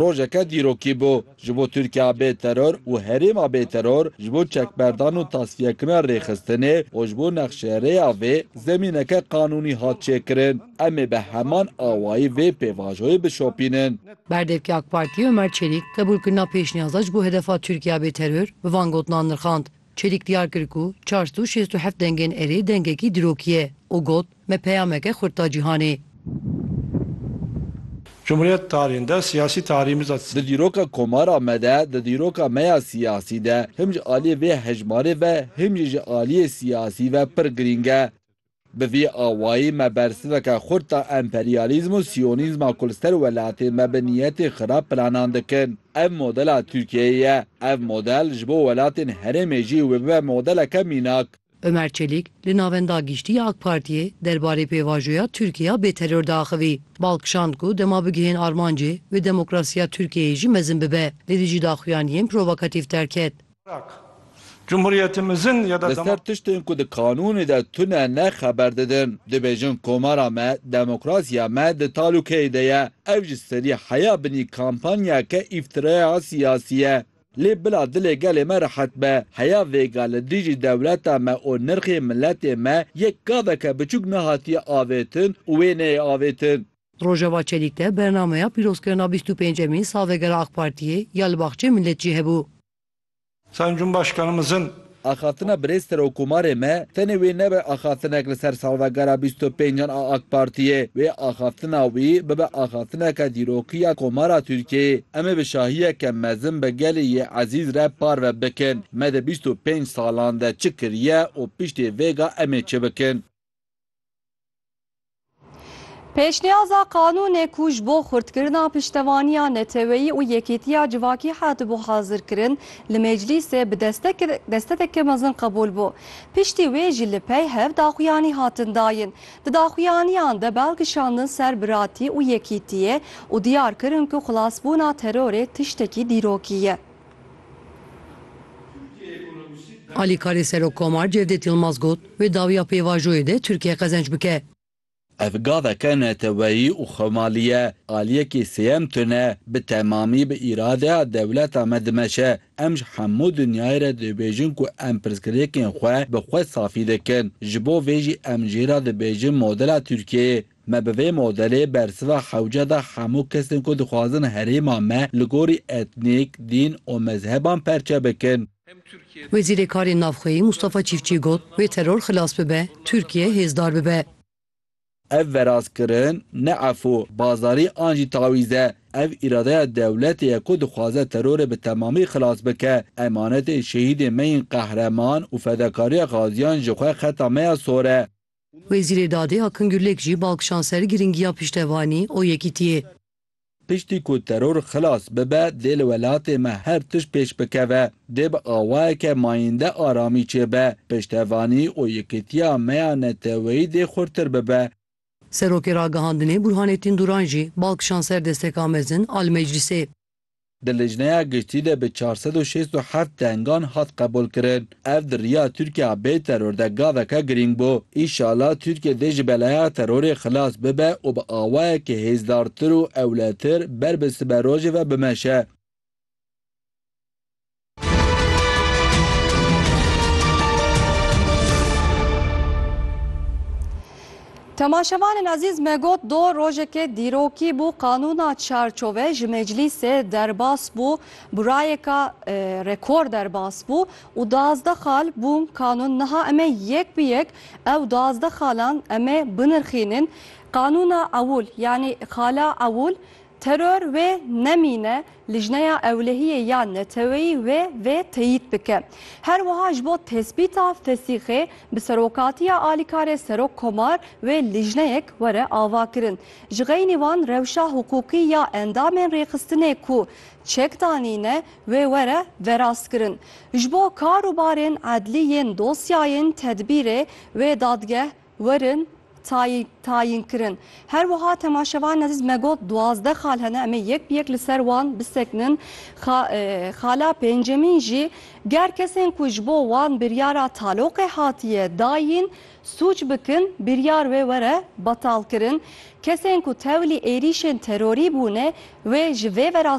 Rojeke dîrokî bû ji bo Tirkiya bê teror û herêma bê teror ji bo çekberdan û tasfiyekirina rêxistinê û ji bo nexşerêya vê zemîneke qanûnî hat çêkirin. Em ê bi heman awayî vê pêvajoyê bişopînin. Berdevkê AK Partiyê Omer Çelîk qebûlkirina pêşniyaza ji bo hedefa Tirkiya bê teror bi van gotinan nirxand. Çelîk diyar kir ku çar sed û şêst û heft dengên erê dengekî dîrokî ye û got, Me peyameke xurt da cîhanê. Cumhuriyet tarihîn de siyasî tarihî miza. Di dîroka Komara me de, di dîroka me ya siyasî de, him ji aliyê vê hejmarê ve him jî ji aliyê siyasî ve pir girîng e. Bi vî awayî me bersiveke xurt da emperyalîzm û siyonîzma ku li ser welatê me bi niyetê xirab planan dikin. Ev modela Tirkiyeyê ye. Ev model ji bo welatên herêmê jî wê bibe modeleke mînak. Umer Çelik li Navenda Giştî ya AK Partiyê derbarê pêvajoya Tirkiya bê teror de axivî. Bal kişand ku dema bigihên armancê wê demokrasiya Tirkiyeyê jî mezin bibe. Lê dijî daxuyaniyên provokatîf derket. Li ser tiştên ku di kanûnê de tune ne xeber didin. Dibêjin komara me, demokrasiya me di talûkeyê de ye. Ev ji serî heya binî kampanyeke îftiraya siyasî ye. Lê bila dilê gelê me rehet be, heya vêga li dijî dewleta me û nirxê miletê me yek gaveke biçûk nehatiye avêtin û wê neyê avêtin. Rojava Çelîk de bernameya pîrozkirina bîst û pêncemîn salvegera AK Partiyê ya li Baxçeyê Milletjî hebû. Sayın Cumhurbaşkanımızın Axaftina Birêz Serokomarê me tenê wê nebe axaftinek li ser salvegera bîst û pêncan a AK Partiyê, wê axaftina wî bibe axaftineke dîrokî ya Komara Tirkiyeyê. Em ê bi şahiyeke mezin bi gelê yê ezîz re parve bikin me di bîst û pênc salan de çi kiriye û piştî vêga em ê çi bikin. Pêşniyaza qanûnê ku ji bo xurtkirina piştevaniya neteweyî û yekîtiya civakî hatibû hazirkirin, li Meclîsê bi destekeke mezin qebûl bû. Piştî wê jî li pey hev daxuyanî hatin dayin. Di daxuyaniyan de bal kişandin ser biratî û yekîtiyê û diyar kirin ku xilasbûna terorê tiştekî dîrokî ye. Alîkarê Serokkomar Cevdet Yilmaz got, Wê dawiya pêvajoyê de Tirkiye qezenc bike. Ev gaveke neteweyî û xwemalî ye. Aliyekî sêyem tune bi temamî bi îradeya dewleta me dimeşe. Em ji hemû dinyayê re dibêjin ku em pirsgirêkên xwe bi xwe safî dikin. Ji bo vê jî em jê re dibêjin modela Tirkiyeyê Me bi vê modelê bersiva xewce da hemû kesên ku dixwazin herêma me li gorî etnîk, dîn û mezheban perçe bikin. Wezîrê Karên Navxweyî Mûstafa Çîfçî got, Wê teror xilas bibe, Tirkiye hêzdar bibe. Ev verazkirin ne efû, bazarî an jî tawîz e. Ev îradeya dewletê ye ku dixwaze terorê bi temamî xilas bike. Emanetên şehîdên me yên qehreman û fedakariya xaziyan ji xwe xeta me ya sor e. Wezîrê Dadê Akın Gürlek jî bal kişand ser girîngiya piştevanî û yekîtiyê. Piştî ku teror xilas bibe dê li welatê me her tişt pêş bikeve. Dê bi awayeke mayînde aramî çêbe. Piştevanî û yekîtiya me ya neteweyî dê xurtir bibe. Serokê Ragihandinê Burhanettin Duran jî bal kişand ser desteka mezin a li meclîsê. Di Lijneya Giştî de bi çar sed û şêst û heft dengan hat qebûlkirin. Ev di riya Tirkiya bê teror de gaveke girîng bû. Îşala Tirkiye dê ji belaya terorê xilas bibe û bi awayekî hêzdartir û ewletir ber bi siberojê ve bimeşe. Temaşevanên Azîz me got do rojekê dîrokî bû qanûna çarçove ji meclîsê derbas bû burayeka e, rekor derbas bû û duazdeh xal bûn qanûn niha em ê yek bi yek ew duazdeh xalan em ê binirxînin qanûna ewûl yanî xala ewûl Teror wê nemîne, Lijneya Ewlehiyê ya Neteweyî wê vê teyîd bike. Her wiha ji bo tespîta fesîxê bi serokatiya alîkarê Serok Komar wê lijneyek were avakirin. Ji xeynî van rewşa hiqûqî ya endamên rêxistinê ku çek danîne wê were verastkirin. Ji bo kar û barên edlî yên dosyayên tedbîrê wê dadgeh werin tayî tayîn kirin. Her wiha temaşevanên ezîz me got duwazdeh xal hene em ê yek bi yek li ser wan bisekinin. Xa xala pêncemîn jî ger kesên ku ji bo wan biryara taloqê hatiye dayîn sûc bikin biryar wê were betal kirin. Kesên ku tewlî êrîşên terorî bûne wê ji vê vera